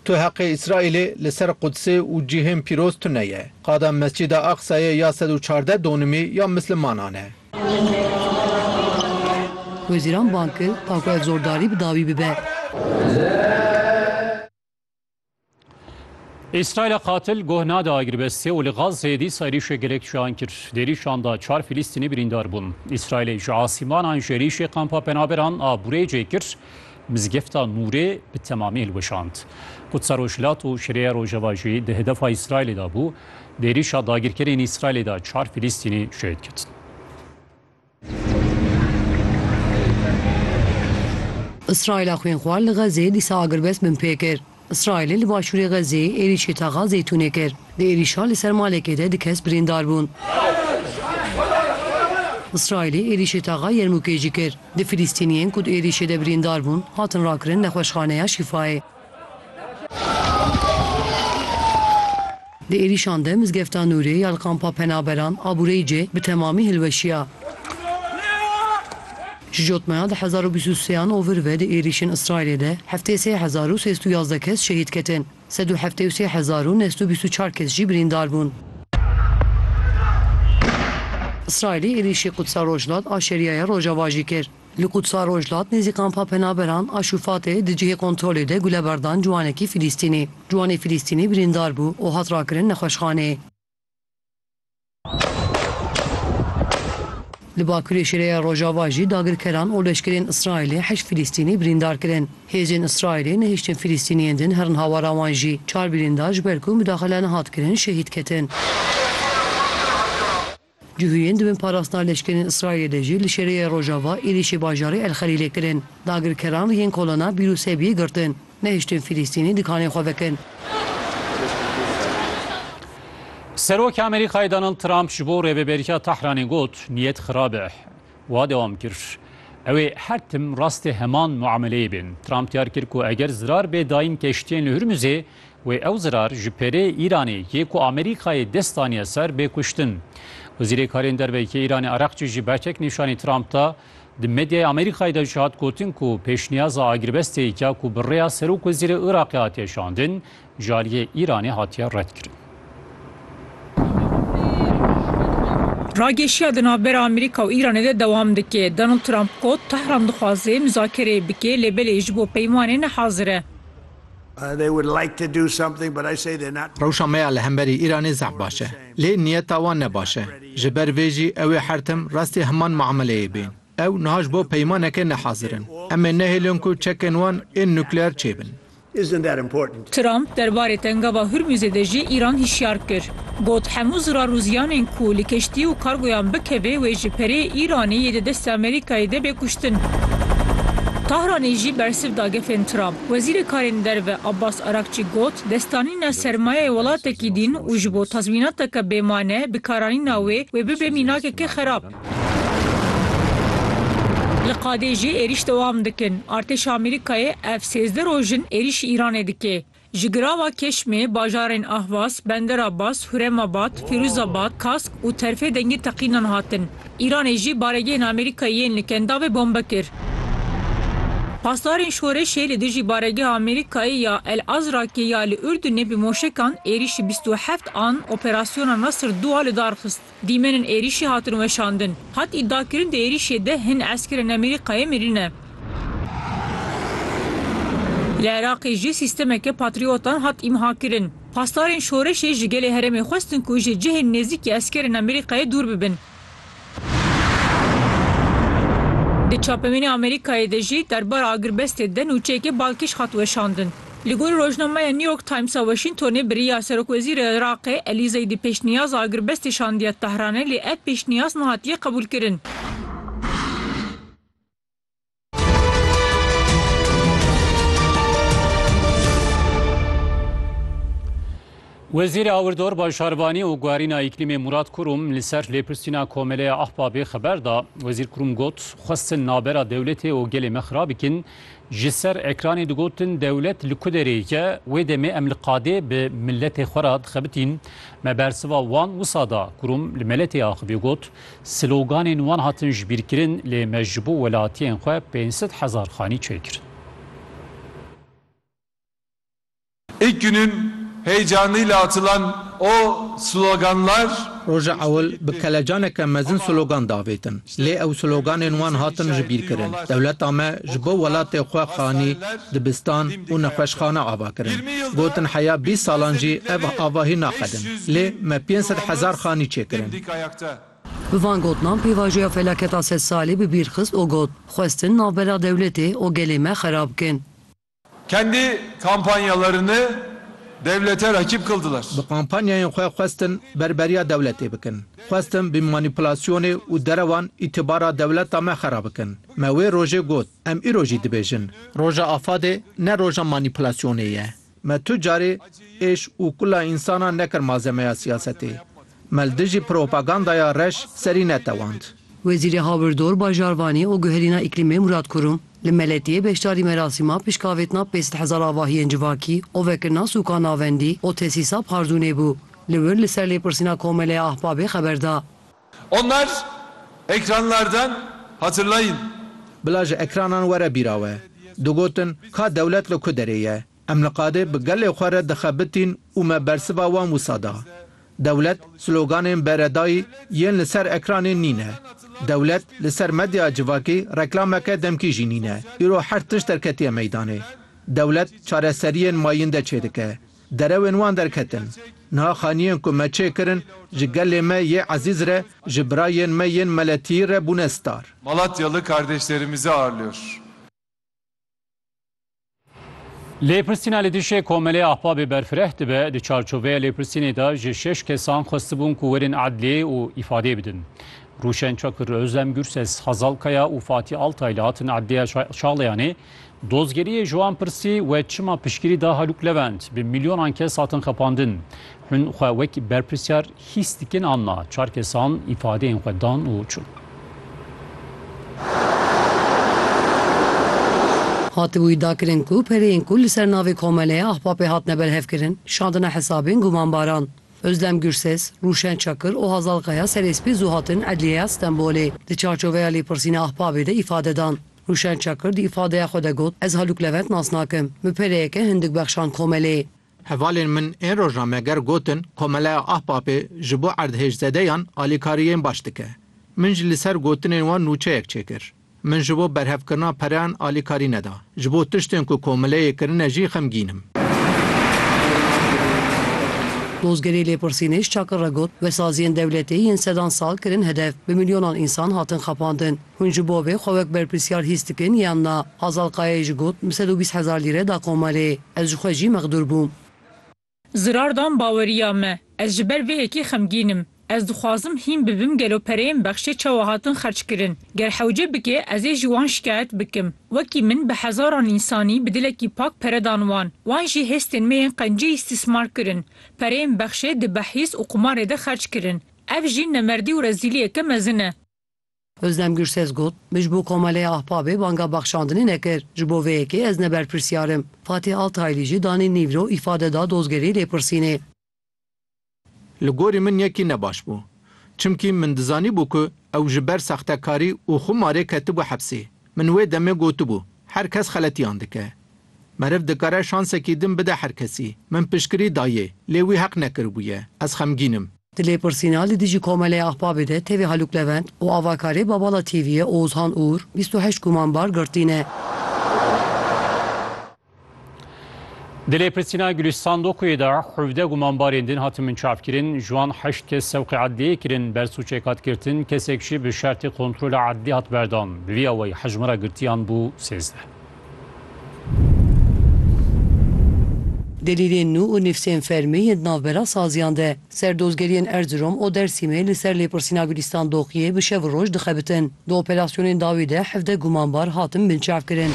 Tu heqê Îsraîlê li ser Qudsê û cîhên pîroz tune ye. Qada Mescîda Aqsayê ya sed û çardeh donimî ya Mislimanan e. Wezîran bang kir ta ku ev zordarî bi dawî bibe. Îsraîla qatil guh nade agirvestê û li Gazeyê dîsa êrîşê gelek çiyan kir. Di êrîşan de çar Filîstînî birîndar bûn. Îsraîlê ji asîmanan ji êrîşê kampa penaberan a Burêcê kir. Mizgefta Nûrê bi temamî hilweşand. Qudsa Rojhilat û Şirêya Rojava jî di hedefa Îsraîlê de bû. Di êrîşa dagirkerên Îsraîlê de çar Filîstînî şehîd ketin. Îsraîla xwînxwar li Xezê dîsa agirbest binpê kir. Îsraîlê li başûrê Xezzeyê êrîşê taxa Zeytûnê kir. Di êrîşa li ser malekê de du kes birîndar bûn. Îsraîlê êrîşê taxa Yermûkê jî kir. Du Filîstîniyên ku di êrîşê de birîndar bûn, hatin rakirin nexweşxaneya Şîfayê. Di êrîşan de Mizgefta Nûrê ya li Kampa Penaberan a Bureycê bi temamî hilweşiya. Ji jotmaya di hezar û bîst û sê an ovir ve di êrîşên Îsraîlê de heftê sê hezar û sêst û yazdeh kes şehîd ketin, sed û heftê û sê hezar û neh sed û bîst û çar kes jî birîndar bûn. Îsraîlê êrîşî Qudsa Rojhilat a Şeriaya Rojava jî kir. Li Qudsa Rojhilat nêzî kampa penaberan a Şûfatê di cihê kontrolê de gule berdan ciwanekî Filîstînî. Ciwanê Filîstînî birîndar bû û hat rakirin nexweşxaneyê. Li Bakurê Şêreya Rojava jî dagirkeran û leşkerên Îsraîlê heşt Filîstînî birîndar kirin. Hêzên Îsraîlê nehiştin Filîstîniyên din herin hawara wan jî. Çar birîndar ji ber ku midaxile nehat kirin şehîd ketin. Cihûyên di bin parastina leşkerên Îsraîlê jî li şerêya rojava êrîşê bajarê El Xelîlê kirin. Dagirkeran yên kolana Bîr û Sebiyê girtin, nehiştin Fîlîstînî di kanê xwe vekin. Serokê Amerîkayê Donald Trump ji bo rêveberiya Tehranê got, niyet xirab e. Wiha dewam kir, Ew ê her tim rastê heman muameleyê bên. Trump diyar kir ku eger zirar bê dayîn keştiyên li Hurmuzê, Wê ew zirar ji pêrê Îranê yê ku Amerîkayê dest daniye ser bê kuştin. Wezîrê Karên Derve yê Îranê Ereqçî ji bertek nîşanî Trump da. Di medyaya Amerîkayê de jî hat gotin ku pêşniyaza agirbesteyêka ku bi rêya Serokwezîrê Iraqê hatiye şandin ji aliyê Îranê hatiye redkirin. Ragêşiya di navbera Amerîka û Îranê de dewam dike. Donald Trump got, Tehran dixwaze muzakereyê bike lê belê ji bo peymanê nehazir e. Rewşa me ya li hemberî Îranê zehf baş e. Lê niyeta wan ne baş e. Ji ber vê jî ew ê her tim rastî heman miameleyê bên. Ew niha ji bo peymaneke ne hazir in. Em ê nehêlin ku çekên wan ên nukleer çêbin. Trump derbarê tengava Hurmuzê de jî Îran hişyar kir. Got, Hemû zirarûziyanên ku li keştî û kargoyan bikeve wê ji perê Îranê yê di destê Amerîkayê de bê kuştin. Tahranê jî bersiv da gefên Trump. Wezîrê Karên Derve Abbas Arakçî got, Destanîna sermayeyê welatekî din û ji bo tazmînateke bêmane bikaranîna wê, wê bibe mînakeke xerab. Li qadê jî êrîş dewam dikin. Artêşa Amerîkayê ev sêzdeh roj in êrîşî Îranê dike. Ji girava Keşmê, bajarên Ahwas, Bender Abbas, Huremabad, Fîrûzabad, Kask û Terfê dengê teqînan hatin. Îranê jî baregehên Amerîkayê yên li Kendavê bombe kir. Pasdarên şoreşê li dijî baregeha Amerîkayê ya El Azrakê ya li Urdunê bi moşekan êrîşî bîst û heft an operasyona Nasr dû a lidarxist. Dîmenên êrîşê hatin weşandin. Hat îdiakirin di êrîşê de hin eskerên Amerîkayê mirîne. Li Iraqê jî sîstemeke patriotan hat îmhakirin. Pasdarên şoreşê ji gelê herêmê xwestin ku ji cihên nêzîkî eskerên Amerîkayê dûr bibin. Di çapemênê Amerîkayê de jî derbara agirbestê de nûçeyeke balkêş hat weşandin. Li gor rojnameya New York Times a Washingtonê biriya serokwezîrê Iraqê Elî Zeydî pêşniyaz agirbestê şandiye Tehranê lê ev pêşniyaz nehatiye qebûlkirin. Wezîrê Awirdor Başarvanî û Guherîna Îklîmê Murad Kurum li ser lêpirsîna Komeleya Ahbabê xeber da. Wezîr Kurum got, Xwestin navbera dewletê û gelê me xira bikin. Ji ser ekranê digotin dewlet li ku derê ye, wê demê em li qadê bi miletê xwe re dixebitîn. Me bersiva wan wisa da. Kurum li meletê axivî got, Sloganên wan hatin jibîrkirin lê me ji bo welatiyên xwe pênc sed hezar xanî çêkirin. İlk günün heyecanıyla atılan o sloganlar. Roja ewil bi kelecaneke mezin slogan davêtin. Lê ew sloganên wan hatin jibîrkirin. Dewleta me ji bo welatê xwe xanî, dibistan û nexweşxane ava kirin. Gotin heya bîst salan jî ev avahî naxedin. Lê me pênc sed hezar xanî çêkirin. Bi van gotinan pêvajoya felaketa sed salî bi bîr xist û got, Xwestin navbera dewletê û gelê me xerab bikin. Kendi kampanyalarını devlete rakip kıldılar. Bi kampanyayên xwe xwestin berberiya dewletê bikin. Xwestin bi manîpulasyonê û derewan îtibara dewleta me xerab bikin. Me wê rojê got, em îro jî dibêjin. Roja afadê ne roja manîpulasyonê ye. Me tu carê êş û kula însanan nekir malzemeya siyasetê. Mel dijî propagandaya reş serî netewand. Wezîrê Hawirdor, Bajarvanî û Guherîna Îklîmê Murad Kurum li Meletiyê beşdarî merasîma pişkavêtina pênc sed hezar avahiyên civakî û vekirina sûka navendî û tesîsa Pardûnê bû. Li wir li ser lêpirsîna Komeleya Ahbabê xeber da. Onlar ekranlardan hatırlayın. Bila ji ekranan were bîra we. Digotin, ka dewlet li ku derê ye? Em li qadê bi gelê xwe re dixebitîn û me bersiva wan wisa da. Dewlet sloganên beredayî yên li ser ekranê nîne. Dewlet li ser medyaya civakî reklameke demkî jî nîne. Îro her tişt derketiye meydanê. Dewlet çareseriyên mayînde çêdike. Derewên wan derketin. Niha xaniyên ku me çêkirin ji gelê me yê ezîz re, ji birayên me yên meletiyî re bûne star. Malatyalı kardeşlerimizi ağırlıyor. Lêpirsîna li dijî Komelê Ahbabê berfireh dibe, di çarçoveya lêpirsînê de ji şeş kesan xwestibûn ku werin edliyê û îfadeyê bidin. Rûşen Çakir, Ozlem Gurses, Hazal Kaya û Fatî Altay li hatin edliya Çağlayanê dozgeriyê ji wan pirsî we çima piştgirî da Halûk Levent bi milyonan kes hatin xepandin. Hûn xwe wek berpirsyar hîs dikin an na? Çar kesan îfadeyên xwe dan û çûn. Hatibû îdia kirin ku pereyên ku li ser navê Komeleya Ahbapê hatine berhevkirin, şandine hesabên gumanbaran. Ozlem Gurses, Rûşen Çakir û Hazal Kaya serê spî zû hatin Edliyeya Stenbolê. Di çarçoveya lêpirsîna Ahbabê de îfade dan. Rûşen Çakir di îfadeya xwe de got, Ez Halûk Levent nas nakim. Min pereyeke hindik bexşand Komeleyê. Hevalên min ên rojnameger gotin Komeleya Ahbapê ji bo erdhêjzedeyan alîkariyên baş dike. Min jî li ser gotinên wan nûçeyek çêkir. Min ji bo berhevkirina pereyan alîkarî neda. Ji bo tiştên ku komeleyê kirine jî xemgîn im. Dozgerê Lêpirsînêj Çakır re got, Wesaziyên dewletê yên sedan sal kirin hedef, bi milyonan însan hatin xapandin. Hûn ji bo vê xwe wek berpirsiyar hîs dikin yan na? Hazal Kayayê jî got, Bi sed û bîst hezar lîre da komelê. Ez ji xwe jî mexdûr bûm. Zirar dan baweriya me. Ez ji ber vê yekê xemgîn im. Ez dixwazim hîn bibim gelo pereyên bexşê çawa hatin xerç kirin. Ger hewce bike ez ê ji wan şikayet bikim. Wekî min bi hezaran însanî bi dilekî pak pere dan wan. Wan jî hêstên me yên qencî îstîsmar kirin. Pereyên bexşê di behîz û qumarê de xerç kirin. Ev jî nemerdî û rezîliyeke mezin e. Ozdem Gürses got, Min ji bo Komeleya Ahbabê banga bexşandinê nekir, ji bo vê yekê ez ne berpirsiyar im. Fatih Altayli jî danî nîvro îfade da dozgerê lêpirsînê. Li gorî min yekî ne baş bû. Çimkî min dizanîbû ku ew ji ber sextekarî û xumarê ketibû hepsê. Min wê demê gotibû, her kes xeletiyan dike. Meriv dikare şansekî din bide her kesî. Min piştgirî dayê, lê wî heq nekiribûye. Ez xemgîn im. Di lêpirsîna li dijî Komeleya Ahbabê de tevî Halûk Levent û avakarê Babala TV'ê Oğuzhan Uğur bîst û heşt gumanbar girtîne. Di lêpirsîna Gulîş Sandokoyê de hevdeh gumanbarên din hatin binçavkirin, ji wan heşt kes sewqê edliyê kirin ber sûcê qedkirtin, kesek jî bi şertê kontrola edlî hat berdan. Bi vî awayî hejmara girtiyan bû sêzdeh. Delîlên nû û nivsên fermî yên di navbera saziyan de. Serdozgeriyên Erzirom û Dersîmê li ser lêpirsîna Gulîstan Doxiyê bi şev û roj dixebitin. Di operasyonên dawî de hevdeh gumanbar hatin binçavkirin.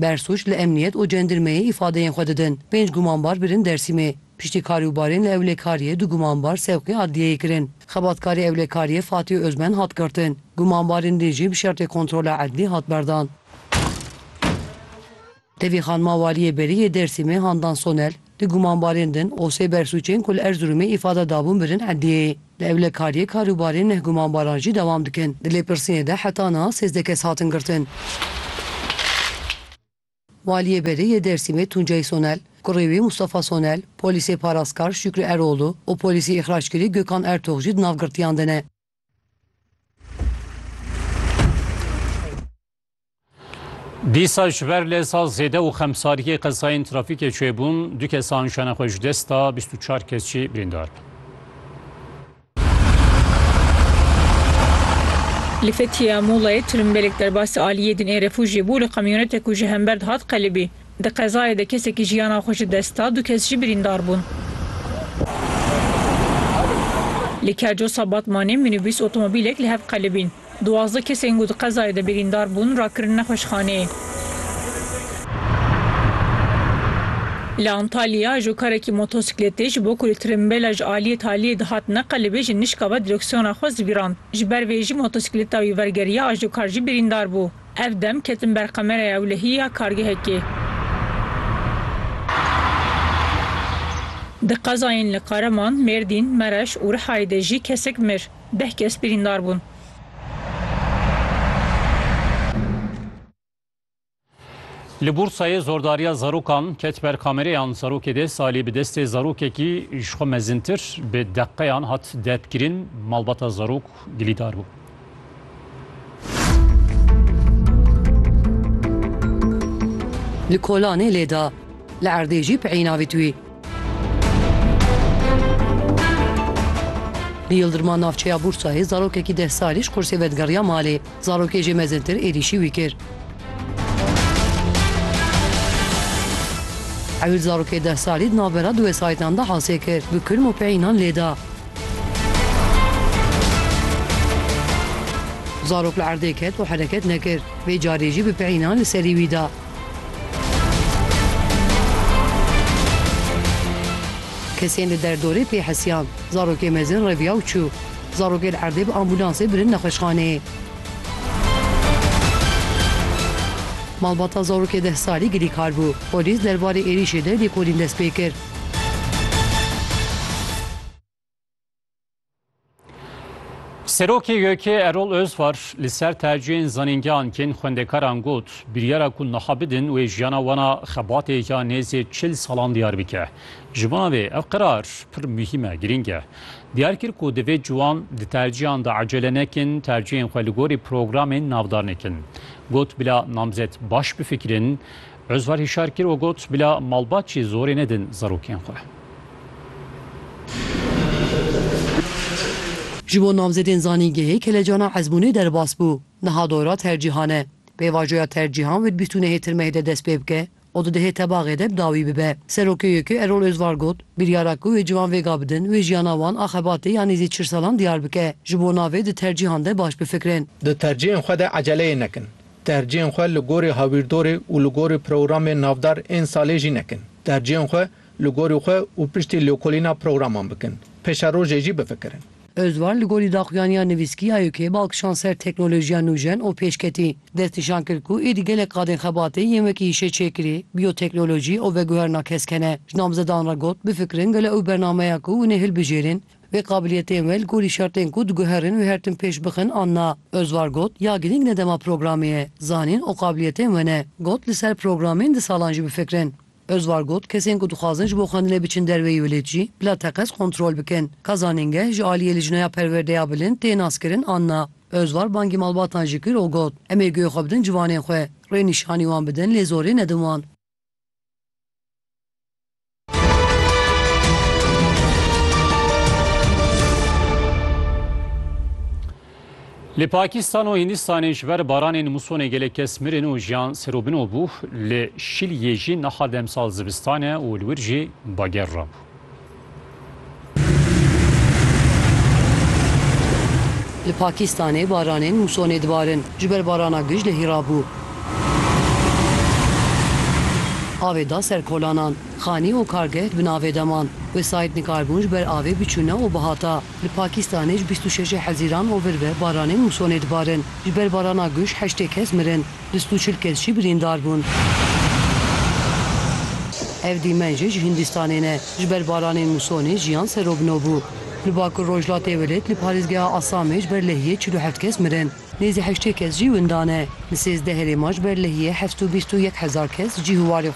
Bersûc li emniyet û cendirmeyê îfadeyên xwe didin. Pênc gumanbar birin Dersîmê. Piştî karî û barê neewlekariyê du gumanbar sevqî adliyeyê kirin. Xebatkarê ewlekariyê Fatîh Ozmen hat girtin. Gumanbarên din jî bi şertê kontrola edlî hat berdan. Tevî xanima Waliyê Berî yê Dêrsimê Handan Sonel, di gumanbarên din û sê bersûcên ku li Erzirûmê îfade dabûn birin edliyeyê. Li ewlekariyê kar û barê neh gumanbaran jî dewam dikin. Di lêpirsînê de heta niha sêzdeh kes hatin girtin. Waliyê Berê yê Dêrsimê Tuncay Sonel, kurê wî Mustafa Sonel, polîsê parastkar Şükrü Eroğlu û polîsê îxrackirî Gökhan Ertox jî di nav girtiyan de ne. Dîsa ji ber leza zêde û xemsariyê qezayên trafîkê çêbûn, du kesan jane xwe ji dest da, bîst û çar kes jî birîndar bûn. Li Fethiye ya Mulayê tirimbêlek derbasî aliyê din ê refûjiyê bû li kamyonetek ku ji hember dihat qelibî. Di qezayê de kesekî jiyana xwe ji dest da, du kes jî birîndar bûn. Li Kercosa Batmanê mînîbûs otomobîlek li hev qelibîn. Duwazdeh kesên ku di qezayê de birîndar bûn rakirin nexweşxaneyê. Li Antalya ajokarekî motosikletê ji bo ku li tirimbêla ji aliyê taliyê dihat neqelibê ji nişka ve direksiyona xwe zibîrand. Ji ber vê jî motosikleta wî vergeriya ajokar jî birîndar bû. Ev dem ketin ber kameraya ewlehî ya kargehekê. Di qezayên li Qareman, Mêrdîn, Mereş û Rihayê de jî kesek mir. Deh kes birîndar bûn. Li Bursayê zordariya zarokan ket ber kamereyan. Zarokê dê salî bi destê zarokekî ji xwe mezintir bi deqeyan hat depkirin. Malbata zarok gilîdar bû. Li Kolanê lê da. Li erdê jî peyî navît wî. Li Yildirma navçeya Bûrsayê zarokekî deh salî ji qursê ve digeriya malê. Zarokê jê mezintir êrîşî wî kir. Ewil zarokê deh salî di navbera du wesayîtan de hasê kir, bi kurm û peyînan lê da. Zarok li erdê ket û hereket nekir. Vê carê jî bi peyînan li serî wî da. Kesên li derdorê tê hesiyan. Zarokê mezin reviya û çû. Zarokê li erdê bi ambûlansê birin nexweşxaneyê. Malbata zarokê deh salî gilîkar bû. Polîs derbarê êrîşê de lêkolîn dest pê kir. Serokê YK Erol Özvar li ser tercihên zanîngehan kên xwendekaran got biryara ku niha bidin wê jiyana wan a xebatê ya nêzê çil salan diyar bike. Ji bona vê ev qerar pir muhîm e, girîng e. Diyar kir ku divê ciwan di tercihan de ecele nekin, tercihên xwe li gorî programên navdarnê kin. Got bila namzet baş bifikirin, Ozvar hişar kir û got, Bila malbatçî zorê nedin zarokên xwe. Ji bo namzedên zanîngehê kelecana ezmûnê derbas bû. Niha dora tercîhan e. Pêvajoya tercîhan wê di bîstûnehê tirmehê de dest pê bike û di dihê tebaxê de bi dawî bibe. Serokê YÖK'ê Erol Ozvar got, Biryara ku wê ciwan vêga bidin, wê jiyana wan a xebatê ya nêzî çil salan diyar bike. Ji bo navê di tercîhan de baş bifikirin. Di tercîhên xwe de eceleyê nekin. Tercihên xwe li gorî hawîrdorê û li gorî programên navdar ên salê jî nekin. Tercihên xwe li gorî xwe û piştî lêkolîna programan bikin. Peşerojê jî bifikirin. Özvar li gorî daxuyaniya nivîskî ya YK'ê bal kişand ser teknolojiya nûjen û pêşketî. Destnîşan kir ku êdî gelek qadên xebatê yên wekî hişeçêkirî, bioteknolojî û veguherina kesk hene. Ji namzedan re got, bifikirin gelo ew bernameya ku hûn ê hilbijêrin, Vê qabiliyetên we li gorî şertên ku diguherin wê her tim pêş bixin an na. Özvar got, Ya girîng ne dema programê ye, zanîn û qabiliyetên we ne. Got, li ser programên di salan jî bifikirin. Özvar got, Kesên ku dixwazin ji bo xwendinê biçin derveyî welêt jî bila teqez kontrol bikin. Ka zanîngeh ji aliyê Lijnaya Perwerdeya Bilind tê naskirin an na. Özvar bangî malbatan jî kir û got, Em ê guhê xwe bidin ciwanên xwe. Rênîşanî wan bidin lê zorê nedin wan. Li Pakistan û Hîndistanê ji ber baranên musonê gelek kes mirin û jiyan serobino bû li şiliyê jî niha demsal zivistane û li wir jî bager rabû. Li Pakîstanê baranên musonê dibarin. Ji ber barana gij lehî rabû. Avê da ser kolanan. Xanî û kargeh di bin avê de man. Wesayît nikarbûn ji ber avê biçûne û bihata. Li Pakîstanê ji bîst û şeşê Hezîran û vir ve baranên musonê dibarin. Ji ber barana gij heştê kes mirin. Bîst û çil kes jî birîndar bûn. Ev dîmen jî ji Hîndistanê ne. Ji ber baranên musonê jiyan serobino bû. Li Bakur Rojhilatê Welêt li parêzgeha Asamê ji ber lehiyê çil û heft kes mirin. Nêzî heştê kes jî winda ne. Li sêzdeh herêman ji ber lehiyê heft û bîst û yek hezar kes cîh û warê xwe